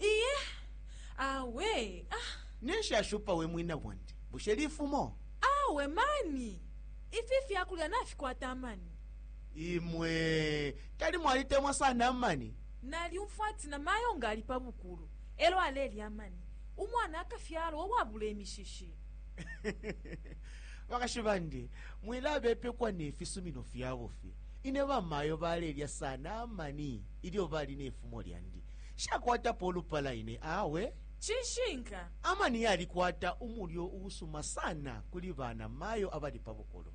iye awe ah, ninshi ashupa we mwina bwandi bushe lifumo awe mani ifi fyakulya nafikwata amani imwe tali mwalitemwa sana amani nalyumfwa ati na mayo nga ali pa bukulu elo alelya amani umwana akafyalwa uwabula imishishi bakashi bandi mwilabepekwa ne fisumino fya bufi ine bamayo balelya sana amani ilyo bali ne fumo lyandi shakwatapo ulupala ine awe cishinka amani yalikwata umulyo uusuma sana kuli bana mayo abali pa bukulu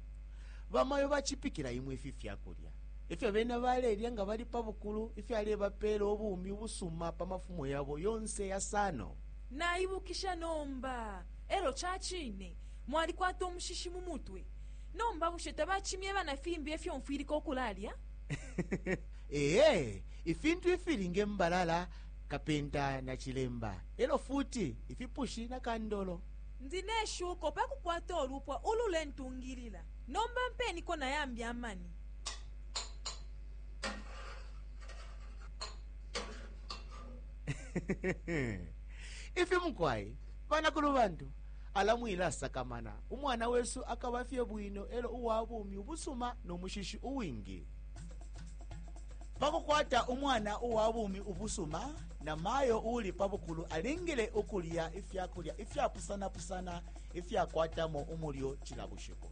bamayo bacipikila imwe ifi fyakulya ifyo bena balelya nga bali pa bukulu ifyalebapeela ubumi ubusuma pa mafumo yabo yonse yasano naibukisha nomba Elo cacine mwalikwata umushishi mumutwe. Nomba bushe tabacimyeba nafimbi efyo mfwilika ukulalya? Eee, ifintu ifili nge mbalala, kapenta na cilemba, elo futi ifipushi na kandolo. Ndi neshuko pakukwata ulupwa ulule ntungilila. Nomba mpeniko nayambi amani. Ifi mukwai? Banakulu bantu, ala mwilasakamana. Umwana wesu akaba fye bwino elo uwa bumi ubusuma no mushishi uwingi. Pa kukwata umwana uwa bumi ubusuma, na mayo uuli pa bukulu alingile ukulya ifya kulya ifyapusana-pusana ifyakwatamo umulyo cila bushiku.